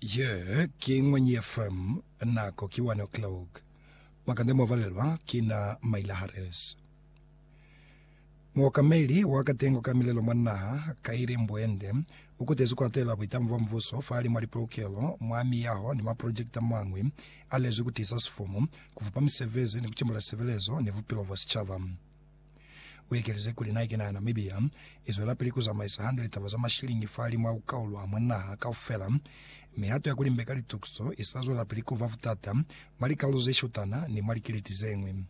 Ye ki Ngwenyi FM, nako ki 1 o'clock. Makande mo valelwa ki na Maila Harris. Muokameli wa katengo ka milelo mwa naha, Kairi Mbuende, u kutezi ku atela buitamo bwa mubuso fahali mwa lipolokelo, mwa miyaho ni mwa project a mañwi a lezwi ku tiisa sifumu, ku fupa misebezi ni ku cembula lisebelezo ni bupilo bwa sicaba. U ekeleze kuli, Na ki na Namibia, i zwelapili ku zamaisa hande litaba za mashilingi fahalimu a ku kaulwa mwa naha kaufela. Mihato ya ku limbeka litukiso i sa zwelapili ku ba butata mwa likalolo ze shutana ni mwa likiliti ze ñwi.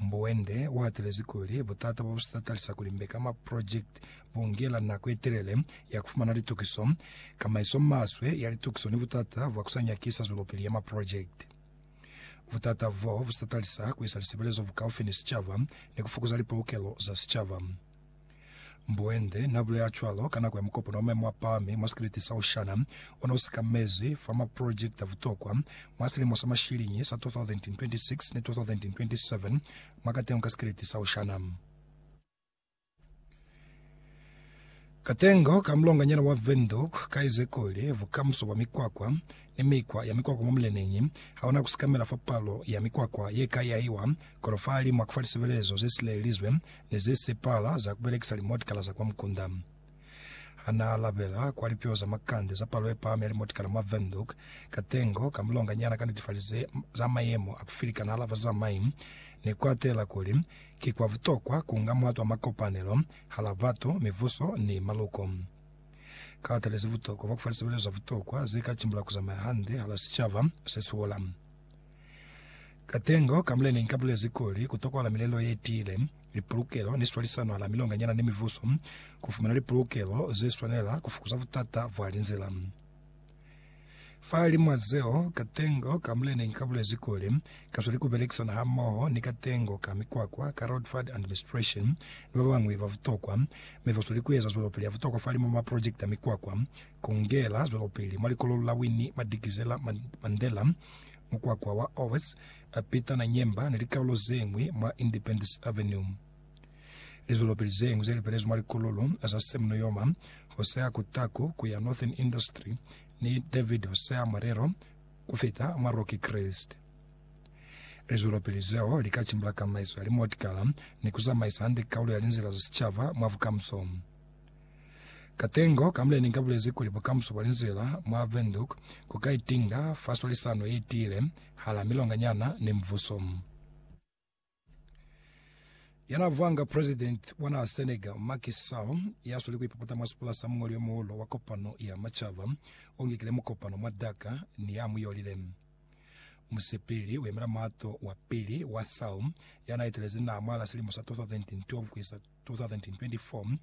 Mbuende u hatelezi kuli, Butata bo bu si tatalisa ku limbeka maprojekiti bu ngela nako ye telele ya ku fumana litukiso, kamaiso maswe ya litukiso ni butata bwa ku sa nyakisa zwelopili ya maprojekiti. Butata bo bu tatalisa ku isa lisebelezo bukaufi ni sicaba ni ku fukuza lipolokelo za sicaba. Mboende n'a bulela cwalo ka nako ya mukopano wa maemo a pahami mwa sikeleti sa Oshana o ne u sikamezi fa maprojekiti a butokwa mwa silimo sa mashiliñi sa 2026 ni 2027 mwa katengo ka sikeleti sa Oshana. Katengo ka mulonganyana wa Windhoek kaize kuli, Bukamuso bwa mikwakwa ni mikwa ya mikwakwa mwa muleneñi hauna kusekamela fa palo ya mikwakwa yeka yahiwa, kono fahalimu ha kufa lisebelezo zesilelelizwe ni zesepala za kubelekisa limotikala za kwa mukunda. Hanaalabela kwa lipio za makande za palo yepahami ya limotikala mwa Windhoek, Katengo, kamulonga nyana ka netifali ze za mayemo a kufilikana hala bazamai, ne kuatela kuli ki kwa butokwa kunga muhatu wa makopanelo hala batu, mibuso, ni maluko. Kaatalize butokwa bwa kufalisebelezo za butokwa zeka cimbula kuzamaya hande hala sicaba sesihola. Ka tengo ka mule nenka bulezi kuli, kutokwahala milelo yetiile, lipulukelo ni swalisano hala milonganyana ni mibuso, kufumana lipulukelo zeswanela, kufukuza butata bwa linzila. Fahalimw'a zeo, ka tengo ka mule nenka bulezi kuli, kasweli kubelekisana hamoho ni ka tengo ka mikwakwa, ka road fund administration, ni babañwi babutokwa, mi basweli kueza zwelopili yabutokwa fahalimw'a maprojekiti a mikwakwa, Kungela zwelopili mwa likololo la Winnie Madikizela Mandela, mukwakwa wa Owes, Peter na Nyemba ni likaulo zeñwi mwa Independence Avenue. Lizwelopili zeñwi zelipelezwi mwa likololo za Sam Nujoma, Hosea Kutaku kuya Northern Industry ni David Hosea Marero kufita mwa Rocky Crest. Lizwelopili zeo lika cimbula kamaiso ya limotikala ni kuzamaisa hande kaulo ya linzila za sicaba mwa bukamuso. Ka tengo ka mule ni ka bulezi kuli bukamuso bwa linzila mwa Windhoek ku ka itinga fa swalisano ye tiile hala milonganyana ni mbuso. Ya n'a vanga president wa naha Senegal, Macky Sall, ya sweli ku ipapata mwa sipula sa muñoli yo muhulu wa kopano ya macaba o ngekile mukopano mwa Dakar ni ya mu yolile. Musepeli u yemela muhato wa pili wa Sall ya n'a etelezi naha mwahal'a silimo sa 2012 ku isa 2024,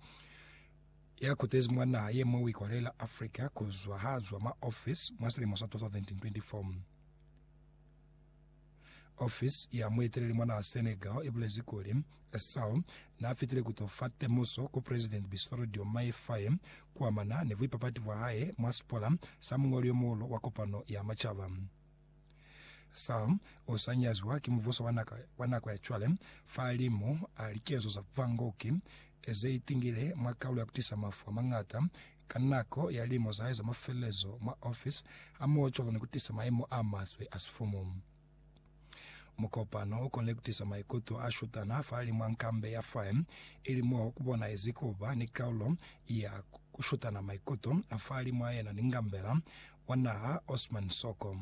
ya kutezi mwa naha ye mwa Wikole la Africa ku zwa ha zwa mwa ofisi mwa silimo sa 2024. Ofisi ya mueteleli mwa naha Senegal i bulezi kuli, Sall n'a fitile ku t'o fa temuso ku Presidenti Bassirou Diomaye Faye ku amana ni buipapati bwa hae mwa sipola sa muñoli yo muhulu wa Kopano ya Macaba. Saul u sa nyazwa ki mubuso wa naka wa nako ya cwale, fa li mo a likezo za vangoki ze itingile mwa kalulo ya ku tisa mafu a mañata ka nako ya limo za hae za mafelelezo mwa ofisi hamohocwalo ni ku tisa maemo a maswe a sifumu. Mukopano u konile ku tisa maikuto a shutana fa li mwa nkambe ya fae, ili mo ku bonahezi ku ba ni kalulo ya ku shutana maikuto fa li mwa yena ni ngambela wa naha Osman Soko.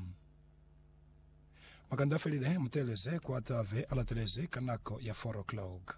Makanda a felile, muteeleze ku atave a latelezi ka nako ya 4 o'clock.